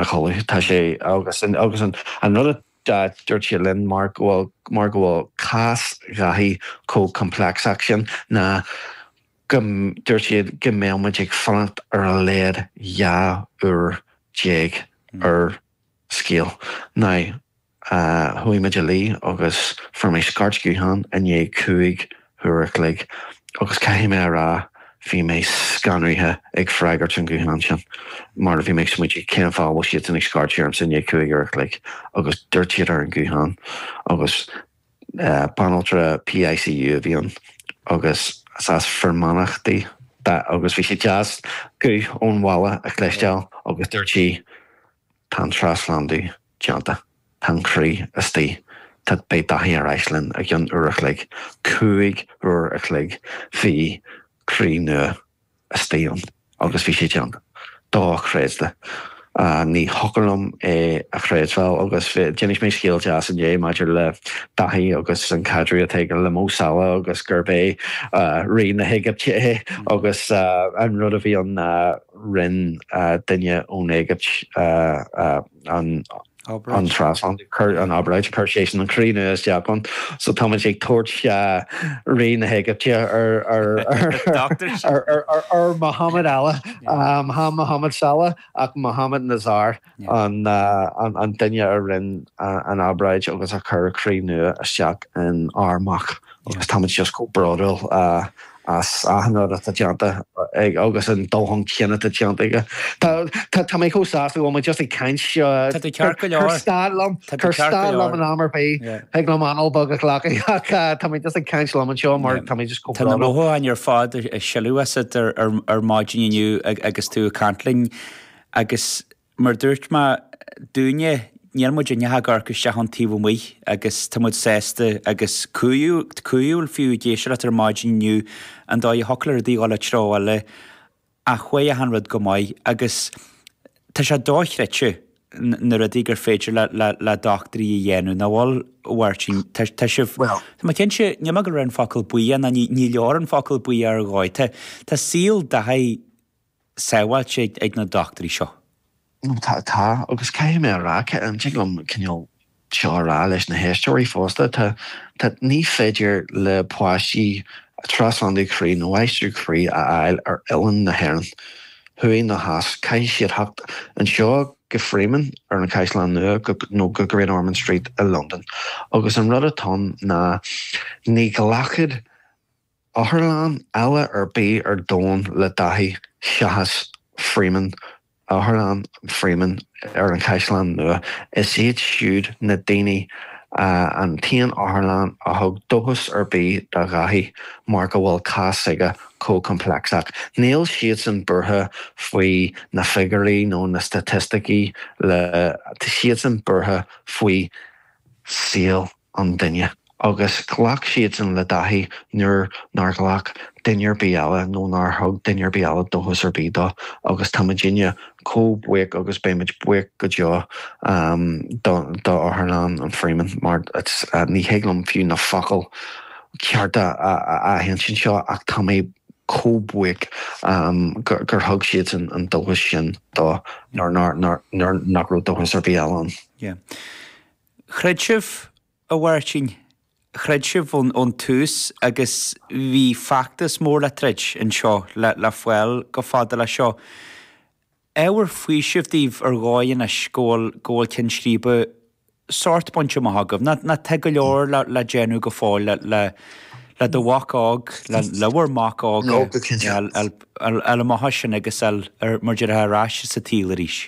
a chodladh. Tá sé agus an rud a dúirt sé linn mar go bhfuil, mar go bhfuil cás Dhaithí chomh complex sin ná go dúirt siad go mbeadh muid ag fanacht ar a laghad dhá uair déag ar scéal. Now. Chuaigh muid a luí agus fuair mé scairt ghutháin i ndiaidh cúig uair a chloig agus caithfidh mé a rá bhí mé scanraithe ag freagairt an ghutháin sin mar bhí mé ag smaointiú cén fáth a bhfuil siadsan ag scairt ormsa i ndiaidh cúig uair a chloig agus dúirt siad ar an ghuthán agus banaltra PICU a bhí ann agus is as Fear Manach di agus bhí sé deas guth ón bhaile a chloisteáil agus dúirt sí. Tá an trasphlandú déanta. Tá an croí istigh. Tá, beidh Dáithí ar ais linn i gcionn uair a chloig. Cúig uair a chloig bhí croí nua istigh ann agus bhí sé déanta. Dochreidte. Ní thiocfadh liom é a chreidbheáil agus d'inis mé scéal deas inné maidir le Dáithí agus an caidreamh atá aige le Mo Salah agus gurb é Rí na hÉigipte é agus an rud a bhí ann ná, Rinn duine ón Éigipt an obráid, chuir seisean an croí nua isteach ann so táimid ag tabhairt Rí na hÉigipte ar Mohamed eile, chan Mohamed Salah ach Mohamed Nazar. an duine a rinne an obráid agus a chuir croí nua isteach in ár mac agus táimid just chomh bródúil as achan rud atá déanta aige agus an dóigh a atá déanta aige. Tá mé chomh sásta go bhfuil mé just ag caint, cuir stad liom, cuir stad liom in am ar bith, thig liom anáil bheag a ghlacadh ach tá mé just ag caint liom anseo mar tá mé just chomh bródúil. Tá na mothúcháin ar fad ag sileadh asat ar maidin inniu agus tú ag caint linn. agus mar a dúirt mé dúinne níl muid ach ag amharc isteach ón taobh amuigh agus tá muid sásta agus corraithe fiú ag éisteacht leat ar maidin inniu an dóigh a thiocfadh le rudaí dhul an treo eile ach chuaigh achan rud go maith agus tá sé dochreidte na rudaí gur féidir le doctúirí a dhéanamh, nach bhfuil a Mháirtín? Tá sibh, tá mé cinnte, níl mé ag rá an focal buíoch, ní leor an focal buíoch ar dhóigh, tá saol, sábháilte ag na dochtúirí seo. nó tá, tá, agus caithfidh mé a rá, tá, tig liom cineál seo a rá leis na héisteoirí fosta, tá, tá, ní féidir le páistí trasphlandú croí nó aistriú croí a fháil ar oileán na hÉireann, thuaidh ná theas, caithfidh siad theacht anseo go Freeman ar an Chaisleán Nua nó go Great Ormond Street i Londain. Agus an rud atá ann ná ní ghlacfadh. Otharlann eile ar bith ar domhan le Dáithí seachas Freeman, Otharlann Freeman ar an Chaisleán Nua. Is iad siúd, na daoine, an t-aon otharlann a thug dóchas ar bith do Dháithí mar go bhfuil cás s'aige chomh complexach. Níl siadsan buartha faoi na figiúirí nó na staitisticí le, tá siadsan buartha faoi saol an duine agus ghlac siadsan le Dáithí nuair nár ghlac duine ar bith eile nó nár thug duine ar bith eile dóchas ar bith dó agus tá muidinne chomh buíoch agus beidh muid buíoch go deo d'Otharlann an Freeman mar ní thig liom fiú na focail chearta a aithint anseo ach tá mé chomh buíoch gur thug siadsan an dóchas sin dó nuair nach raibh dóchas ar bith eile ann. Chreid sibh, a Mháirtín, chreid sibh ón tús agus bhí feachtas mór le troid anseo le fáil chomh fada leis seo. Ábhar faoisimh daoibh ar dhóigh anois go bhfuil ceann scríbe sórt bainte amach agaibh. Nó tá go leor le déanamh go fóill le do mhac óg, le bhur mac óg, ar a mbeatha sin agus é mar a déarfá ar ais sa tsaol arís?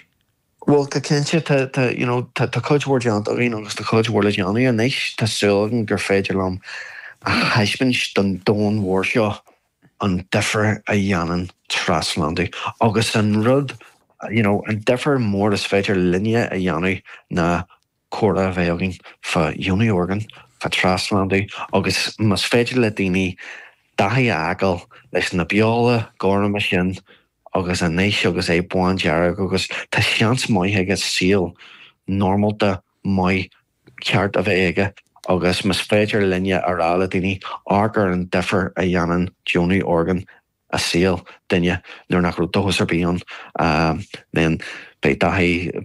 Bhuel, go cinnte, tá, tá, you know, tá, tá cuid mhór déanta againn agus tá cuid mhór le déanamh anois. Tá súil agam gur féidir liom a thaispeáint don domhan mhór seo an difir a dhéanann trasphlandú agus an rud, you know, an difir mór is féidir linne a dhéanamh ná, comhrá a bheith againn fá dheonú orgán, fá trasphlandú agus más féidir le daoine Dáithí a fheiceáil leis na beola gorma sin agus anois agus é bándearg agus tá seans maith aige saol normálta maith ceart a bheith aige agus más féidir linne a rá le daoine amharc ar an difir a dhéanann deonú orgán i saol duine nuair nach raibh dóchas ar bith ann then beidh Dáithí